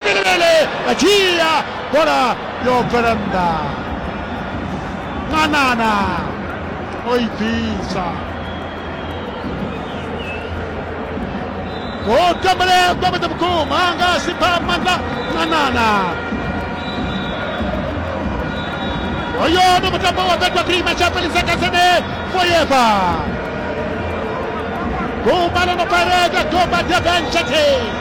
Belebele a dzhia bola yo bvela nnḓa ṅwanana o i bvisa ho tambelea kwamata vhukuma anga a si pha maanḓa ṅwanana hoyo ndi mutambo wa betwa prima tsha fhelisa kasene foyeva gumba ḽo no pareka gomba durban shatei